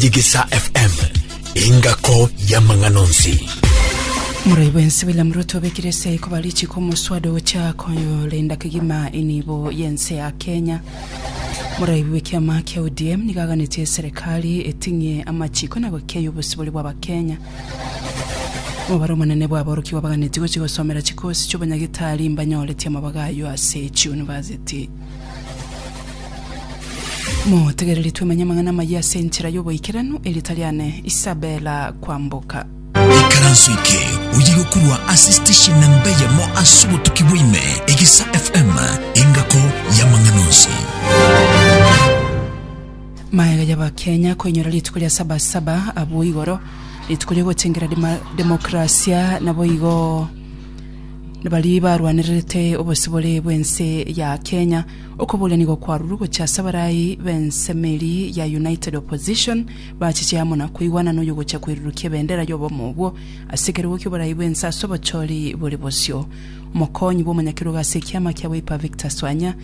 Digisa FM, engako y'amang'ana onsi. Morai bwensi William Ruto obekire ase ikoba richiko omoswada ogocha korenda kegima enibo y'ense ya Kenya. Morai bw'ekiama kia ODM nigo aganetie eserekari eting'ie amachiko na gokeia obosibore bw'Abakenya. Omobaro omonene bw'aborokigwa baganetie gochia gosomera chikosi chi'obonyagitari mbanyoreti amabaga ayio ase chiyunivasiti. Motegereri twemanye amang'ana amayia ase enchera y'oboikeranu, erio tari aane Isabela kwamboka. Ikaranso eke oye gokurwa ase station namba eyemo ase obotuki bwa ime, Egisa FM, engako y'amang'ana onsi. Maega y'Abakenya koinyora rituko ria Sabasaba abwo igoro, rituko ri'ogotengera dema- demokrasia naboigo baria barwanererete obosibore bw'ense ya Kenya, okoboorania gokwarurwe gochia ase abarai b'ensemo eria ya United Opposition bachiche amo na koigwana noyo gochia koirurukia ebendera y'obomo obwo ase ekerogo ki'oborai bw'ense ase obochori bore bosio. Omokonyi bw'omonyakerogo ase ekiama kia Wiper Victor Swanya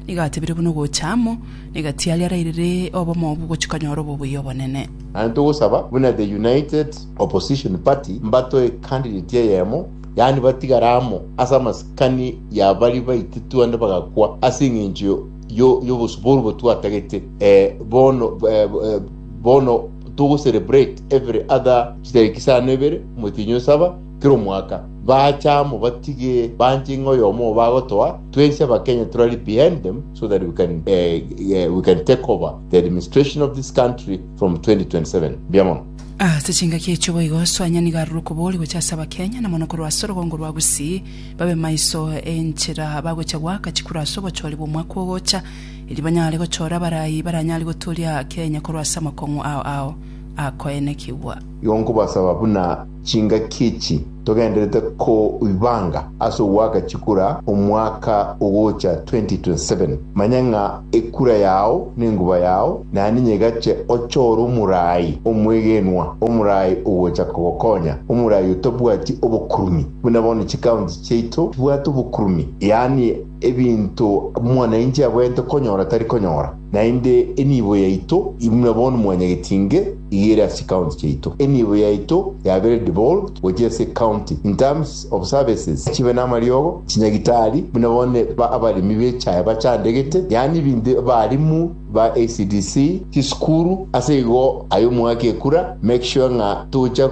nigo atebire buna ogocha amo negatiari arairire obomo obwo gochia konyora obobuya obonene. Naende togosaba buna The United Opposition party mbatoe candidate eyemo, yaani batigare amo ase amasikani ya baria baito twande bagakwa ase eng'encho yo- y'obosubwa obo twatagete. Eh, bono eh, eh, bono togocelebrate every other chitariki isano ebere motienyi o saba kera omwaka bacha amo batige banche ng'a oyomo obo agotoa twensi abakenya turari behind them so that we can, eh, eh, we can take over the administration of this country from 2027 mbuya mono Ase chingaki echio boigo Soanya nigo arure okobori gochia ase Abakenya, na mono korwa ase orogongo rwa Gusii, babe maiso enchera bagochia goaka chikura ase obochori bw'omwaka ogocha, erio banyare gochora abarai baranyare goturia Kenya korwa ase amakong'u ao ao akoenekigwa. Igo nkobasaba buna chingaki echi. Togenderete koibanga ase ogoaka chikura omwaka ogocha 2027. Manya ng'a ekura yao nenguba yao na ninye egache ochore omorai omwegenwa, omorai ogocha kogokonya, omorai otabwati obokurumi, buna bono chikaunti chiaito chibwate obokurumi, yaani Ebinto omwananchi abwenerete konyora tari konyora, naende enibo yaito imwe bono mwanyageti inge iga ere ase county chiaito. Enibo yaito yabere devolved gochia ase county in terms of services chibe namariogo, chinyagitari, buna bono abaremi b'echae bachandegete, yaani ebinto abarimu ba ECDC, chisukuru, ase igo aye omwaka ekura make sure ng'a tocha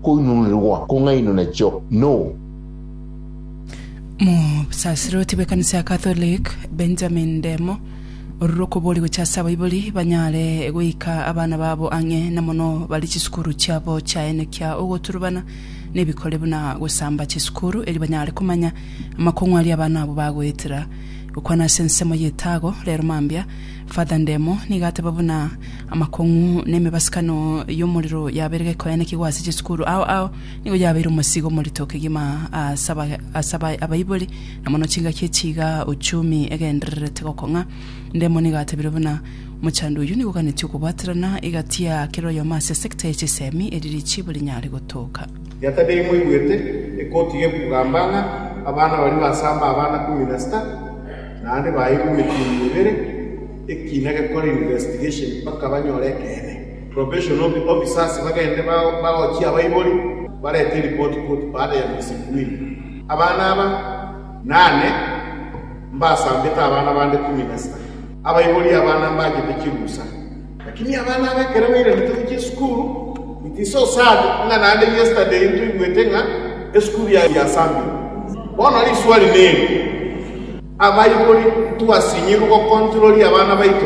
koinununerwa kong'ainwa nachio no. Mosasiroti bw'ekanisa ya Catholic Benjamin Ndemo orure okoboria gochia ase abaibori banyare goika abana babo ang'e na mono bare chisukuru chiabo chiaene kia ogoturubana nebikore buna gosamba chisukuru eri banyare komanya amakong'u aria abana abo bagoetera. Gokwana ase ensemo y'etago rero mambia, Father Ndemo nigo ateba buna amakong'u nemebasikano y'omorero yabeire gekoenekigwa ase chisukuru ao ao Nigo yabeire omosigo omorito kegima ase aba- ase aba- abaibori, na mono chingaki echi iga Uchumi egendererete gokong'a. Ndemo nigo atebirie buna, Omochando oyio nigo oganeti okobwaterana egati ya kera oyomo ase esekta ya chisemi eri richibo rinyare gotoka. Yatebia imwegwete, Ekoti gekugamba ng'a abana baria basamba abana kumi na sita, naende baeirwe emetunwa ebere, ekina gekore investigation mpaka banyore ekeene. Probation officers bagende bagochie abaibori barete eripoti koti baada ya miezi miwili. Abana aba nane mbasambete abana bande kumi na sita. Abaibori abana mbachete chirusa. Lakini abana aba ekero bairanete gochia esukuru, it is so sad ng'a naende yesterday ntoigwete ng'a esukuru yasambiwe. Bono riswali neri, abaibori ntwasinyirwe gocontroli abana baito?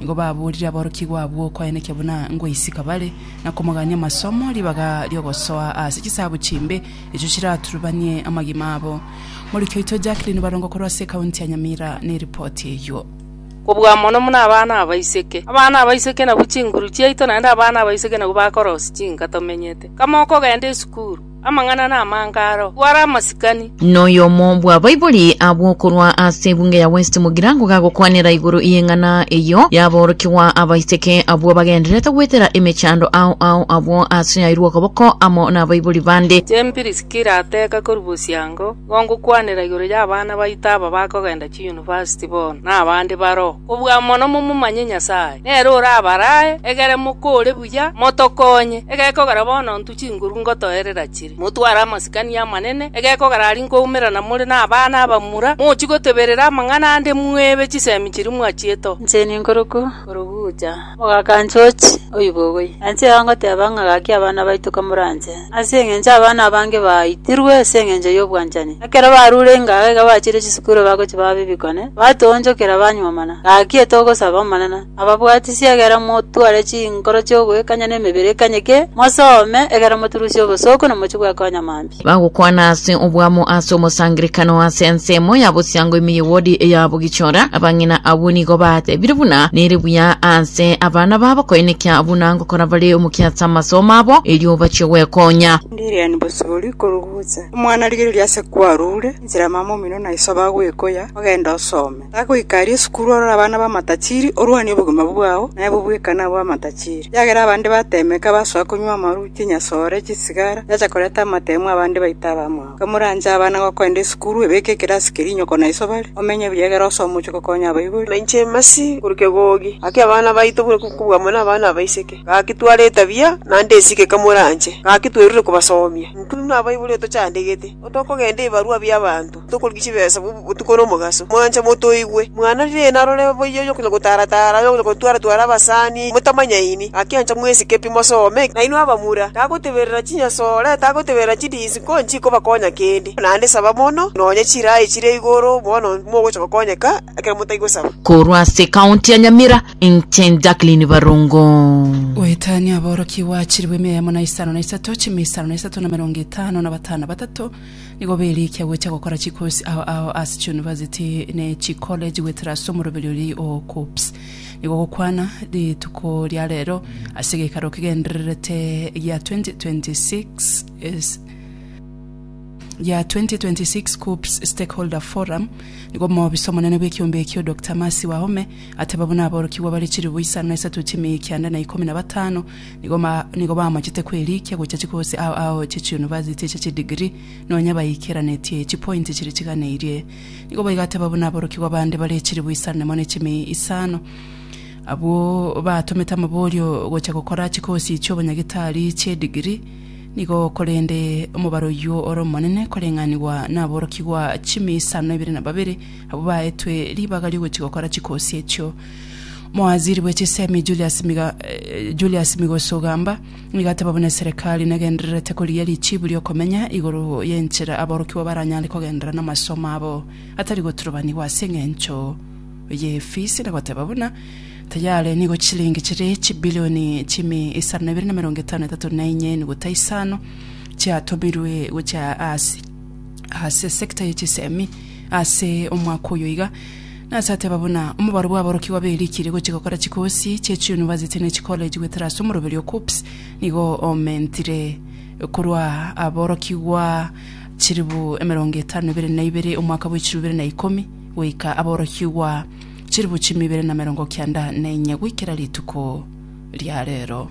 Nigo baboorire aborokigwa abwo okoaenekia buna ngoisika bare, na komogania amasomo ribaga ri'ogosoa ase chisabu chimbe, echo chiraturubanie amagima abo. Morikia oito Jacqueline Barongo korwa ase ekaunti ya Nyamira neripoti eyio. Kobua mono buna abana abaiseke. Abana abaiseke nabwo chinguru chiaito naende abana abaiseke nabwo bakorosia chinka tomenyete. Kama okogenda esukuru. Amang'ana namange aro, kware amasikani. Noyomo bwa baibori abwo korwa ase ebunge ya West Mugirango gagokwanera igoro y'eng'ana eyio yaborokigwa abaiseke abwo bagendererete goetera emechando ao ao abwo ase yairwe okoboko amo nabaibori bande. Inche Piriskila ateka korwa bosyango, nigo ngokwanera igoro y'abana baito aba bakogenda chiyunivasiti bono, na abande baroo, kobua mono momomanye Nyasae. Nere orabarae, egere mokore buya, motokonye, egekogera bono ntwe. chinguru ngotoerera chire. Motware amasikani amanene, egeko garari nkoumerana more nabana abamura, mochie goteberera amang'ana ande mwebe chisemi chiria mwachiete. Inche ninkoruku korugucha omogakanchi ochi oibogoyi, na inche iga ngoteba ng'a gaki abana baito kamoranche, ase engencho abana abange baitirwe ase engencho y'obwanchani. Ekero barure ingaga iga bachire chisukuru bagochia baba ebikonye, batoonchokera banyuomana, gaki etogosaba Omonene. Ababwatisi, egera motware chinkoro chi'ogoikanya na emebere ekanyeke, mosome, egera moturusie obosooku na mochie bwekonya mambia. Bagokwana ase obwamo ase omosangerekano ase ensemo ya bosyango ime ye wodi ya Bugichora. Abang'ina abwo nigo batebire buna nere buya ase abana babo koenekia buna ngokora bare omokia ase amasomo abo erio bachie gwekonya. Ndiriani bosibori korugusa omwana rigereria ase kwarure, inchera mama omino na iso bagwekoya, ogende osome. Tagoika aria esukuru orore abana b'amatachiri, orwanie obogima bwao, na aye bobweka nabwo amatachiri. Ekiagera abande bateemeka, basoa konywa amaruchi, enyasoore, chisigara, chiacha koreta amateemu, abande baita abamwabo. Nka moranche abana gokoenda esukuru, ebeke ekerasi keria inyoko na iso bare, omenye buya egere osoe omochie gokonya abaibori. Na inche Mercy, korwa Kegogi, gaki abana baito buna kobua amo nabana abaiseke, gaki tware etabia, naende esike eka moranche, gaki twerure kobasoomia. Intwe buna abaibori otochandegete, otokogenda ebibarua bi'abanto. Tokorigia chibesa botuko na omogaso. Mwanche motoigwe. Mwana riina arore boiyo onye okonya gotara-tara, onye okonya gotwara-twara abasani, motamanyaini. Gaki ancha mwesike pi mosome. Nainwe abamura, tagoteberera chinyasore, tagoteberera chidinsi nko nchikobakonya kende. Naende saba mono, nonya chiraai chire igoro, bono mogocha gokonyeka ekero motai gosaba. Korwa ase ekaonti ya Nyamira, inche Jacqueline Barongo. Goetania aborokigwa chilifu ime eyemo na isano na isato, chimia isano na isato na emerongo etano na batano batato, Nigo berikia gocha gokora chikosi ao ao ase chiunivasiti ne chikolleji goetera ase omoroberio ri o KUPPS. Nigo gokwana rituko ria rero ase egeikaro kegendererete gia 2026 is- gia 2026 KUPPS Stakeholder Forum, nigo omobisa omonene bw'ekiombe ekio Doctor Mercy Wahome ateba buna aborokigwa bare chilifu isano na isato chimiya ekianda na ikomi na batano nigo bamachete kwerikia gochia chikosi ao ao chie chiunivasiti echi chie degree, nonya baikeranetie chipointi chiria chiganeirie. Nigo baigateba buna aborokigwa bande bare echiribu isane mo ne chimi isano. Abwo batomete amaborio gochia gokora chikosi chi'obonyagitari chie degree, nigo korende omobaro oyio ore omonene koreng'anigwa naborokigwa chimi isano na ibere na babere abwo baetwe ribaga ri'ogochia gokora chikosi echio. Mowaziri bwe chisemi Julius Miga, eh, Julius Migoso Ogamba nigo ateba buna eserekari negendererete korigia richibu riokomenya igoro y'enchera aborokigwa baranyare kogenderera namasomo abo atari goturubanigwa ase eng'encho y'efisi na goteba buna tayare nigo chilingi chire chibilioni chimi isano na ibere na emerongo etano na etato na enye enuguta isano chiatomirwe gochia ase ase sector ye chisemi ase omwaka oyo iga Nase ateba buna omobaro bw'aborokigwa be rikiri gochia gokora chikosi chie chiyunivasiti ne chikoleji goetera ase omoroberi o KUPPS nigo omentire korwa aborokigwa chilifu emerongo etano na ibere na ibere omwaka bwe chilifu ibere na ikomi goika aborokigwa chilifu chimu ibere na merongo kianda na enye goikera rituko ria rero.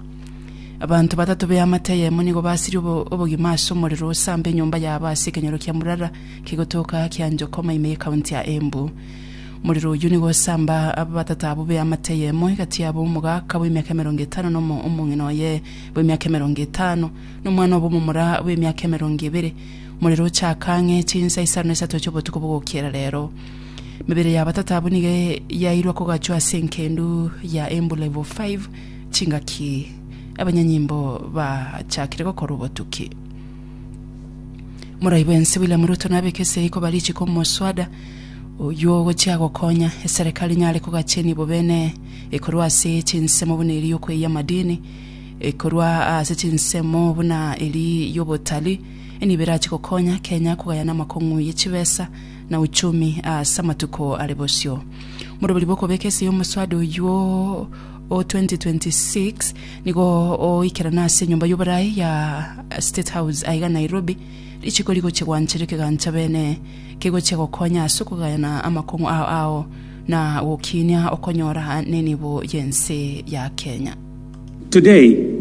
Abanto batato b'eamate eyemo nigo basirie obo- obogima ase omorero osambe enyomba yabo ase ekenyoro kia Murara Kegotoka kia Njokoma ime y'Ekaunti ya Embu. Morero oyio nigo osamba abatata abwo b'eamate eyemo egati yabo omogaka bw'emiaka emerongo etano na omo omong'ina oye bw'emiaka emerongo etano, na omwana obo omomura bw'emiaka emerongo ebere. Morero ochaka ang'e chinsa isano na isato chi'obotuko bogokiera rero. Emebere ya abatata abwo nigo yairwa kogachwa ase enkendu ya Embu Level Five chingaki abanyanyimbo bachakire gokora obotuki. Morai bwensi William Ruto nabeke esegi koba richiko omoswada oyio ogochia gokonya eserekari nyare kogachenia bobene ekorwa ase chinsemo buna eri yokweyia amadini, ekorwa ase chinsemo buna eri yobotalii, nigo berache gokonya Kenya kogayana amakong'u ye chibesa na uchumi ase amatuko are bosio. Morobori bw'okobeka esegi omoswada oyio o 2026 nigo oikerana ase enyomba y'oboraai ya State House aiga Nairobi, richiko rigochia gwanchera ekegancha beene kegochia gokonya ase okogayana amakong'u ao ao na gokiinia okonyora nenibo y'ense ya Kenya. Today,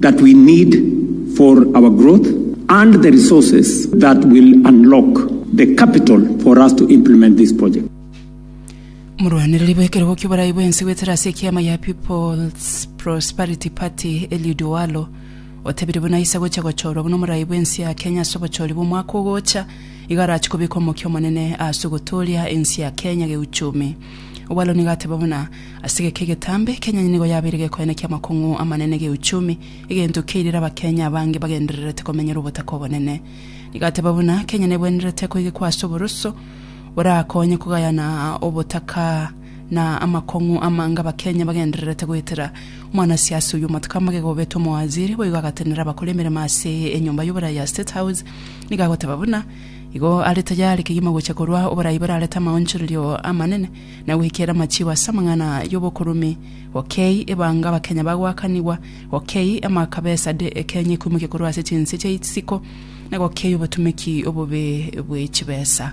that we need for our growth and the resources that will unlock the capital for us to implement this project. Omorwanereri bw'ekerogo-kia oborai bw'ense goetera ase ekiama ya People's Prosperity Party, Eliud Owalo, otebirie buna aisa gocha gochorwa buna omorai bw'ense ya Kenya ase obochori bw'omwaka ogocha, iga arache kobeka omokia omonene ase ogotooria ense ya Kenya geuchumi. Owalo nigo ateba buna. Ase egeka egetambe, Kenya nigo yabeire gekoyana ki'amakong'u amanene geuchumi, egento keirire Abakenya abange bagendererete komenyera obotaka obonene. Nigateba buna Kenya nebwenerete koigekwa ase oboroso borakonye kogayana obotaka na amakong'u amange Abakenya bagendererete goetera. Omwanasiasa oyio omotaka magega obetwe omowaziri boigo agatenena abakore emeremo ase enyomba y'oborai ya State House nigo agoteba buna igo are tayari kegima gocha korwa oborai borarete amaonchorerio amanene na goikera amachigo ase amang'ana y'obokurume, gokei ebanga abakenya bagoakanigwa, gokei amaka besa de Kenya ekoimokia korwa ase chinse chia isiko, na gokei obotumeki obobe bwe chibesa.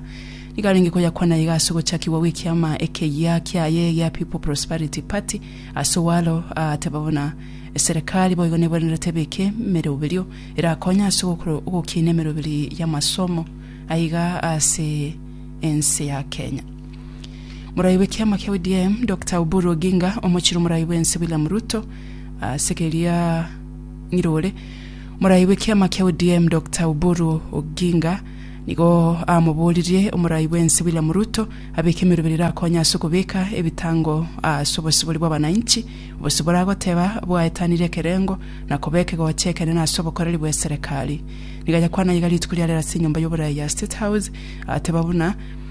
Nigo arenge koyakwana iga ase ogochakigwa gw'ekiama ekeyia kiaye gia People Prosperity Party ase owalo aateba buna eserekari boigo nebwenerete ebeke emeroberio erakonye ase ogokora ogokiina emeroberi y'amasomo aiga ase ense ya Kenya. Morai bw'ekiama kia ODM Dokta Oburu Oginga omochire omorai bw'ense William Ruto ase keria ng'ire ore morai bw'ekiama kia ODM Dokta Oburu Oginga nigo amoboririe omorai bw'ense William Ruto abeke emerobera erakonye ase okobeka ebitango ase obosibori bw'abananchi obose boragoteba bwaetanire ekerengo na koba ekegocha ekenene ase obokoreri bw'eserekari. Nigo ayakwana iga rituko ria rero ase enyomba y'oborai ya State House ateba buna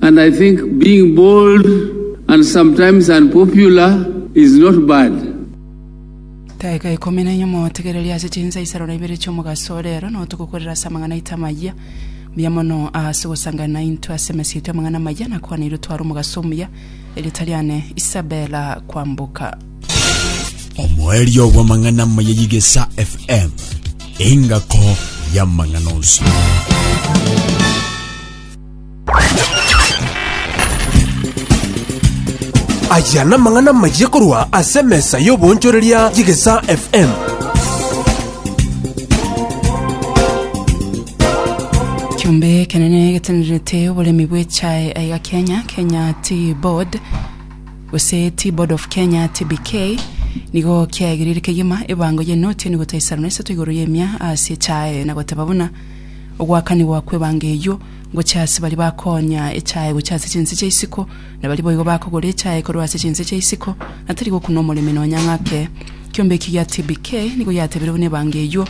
And I think being bold and sometimes unpopular is not bad. Daika ikomi na nyuma otegererie ase chinsaisero na ibere chi'omogaso ore ero, nao togokorera ase amang'ana aito amayia. Mbuya mono ase ogosangana naintwe ase emesa yaito y'amang'ana amayia na kwana erio tware omogaso omuya. Erieta riane Isabella Kwamboka. Omoerio bw'amang'ana amaya y'Igesa FM, engako y'amang'ana onsi. Aya namang'ana amayia korwa ase emesa y'oboonchoreria y'egesaa FM. Kiombe ekenene getenerete oboremi bw'echae aiga Kenya, Kenya Tea Board gose Tea Board of Kenya TBK nigo kiaegereire kegima ebango y'enoti enigo taisano na isato igoro y'emia ase echae na goteba buna Ogoakanigwa kw'ebango eyio gochia ase baria bakoonya echae gochia ase chinse chia isiko, na baria boigo bakogora echae korwa ase chinse chia isiko, na tari gokuna omoremi nonya ng'ake. Kiombe ekio gia TBK nigo giatebiire buna ebango eyio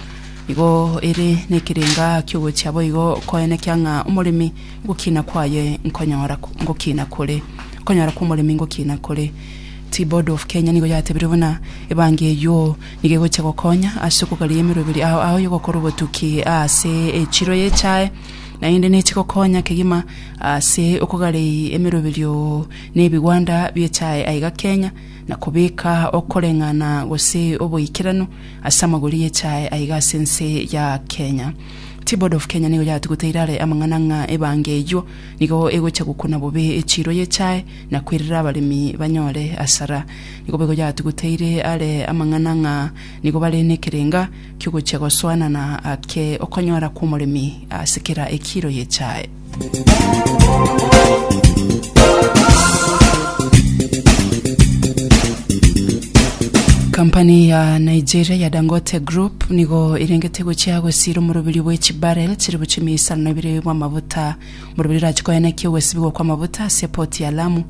nigo ere nekerenga kiogochia boigo koenekia ng'a omoremi gokina kwaye nkonyora ngokina kore okonyora kw'omoremi ngokina kore. Tea Board of Kenya nigo yatebiire buna ebango eyio Nigo egochia gokonya ase okogaria emeroberi ao ao y'ogokora obotuki ase echiro y'echae, naende nechi gokonya kegima ase okogarei emeroberio n'ebigwanda bi'echae aiga Kenya, na kobeka okoreng'ana gose oboikeranu ase amagori y'echae aiga ase ense ya Kenya. Tea Board of Kenya nigo yatuguteire are amang'ana ng'a ebango eyio nigo egochia gokuna bobe echiro y'echae, na kwerera abaremi banyore asara. Nigo boigo yatuguteire are amang'ana ng'a nigo bare nekerenga ki'ogochia gosoanana ake okonyora kw'omoremi ase kera ekiiro y'echae. Kampani ya Nigeria ya Dangote Group nigo erengete gochia gosira omoroberio bwe chibarrel chire bochia emeisano ebere bw'amabuta Borobiri orache koenekia ogwesibigwa kw'amavuta ase epoti ya Lamu,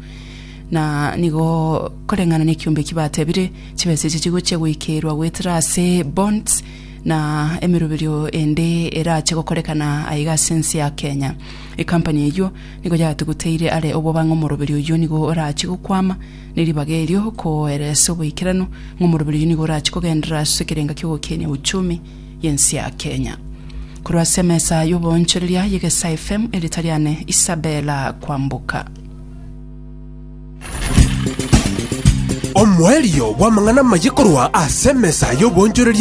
na nigo koreng'ana nekiombe eki batebire, chibesa echi chigochia goikeirwa goetera ase bonds na emeroberio ende erache gokorekana aiga ase ense ya Kenya. Ecompany eyio nigo yatuguteire are obwo bang'e omoroberio oyio nigo orache gokwama ne ribaga erio koeresa oboikeranu ng'a omoroberio oyio nigo orache kogenderera ase ekerenga ki'ogokenia uchumi y'ense ya Kenya. Korwa ase emesa y'oboonchoreria y'Egesa FM, erieta riane Isabella Kwamboka. Omoerio bw'amang'ana amaye korwa ase emesa y'oboonchoreria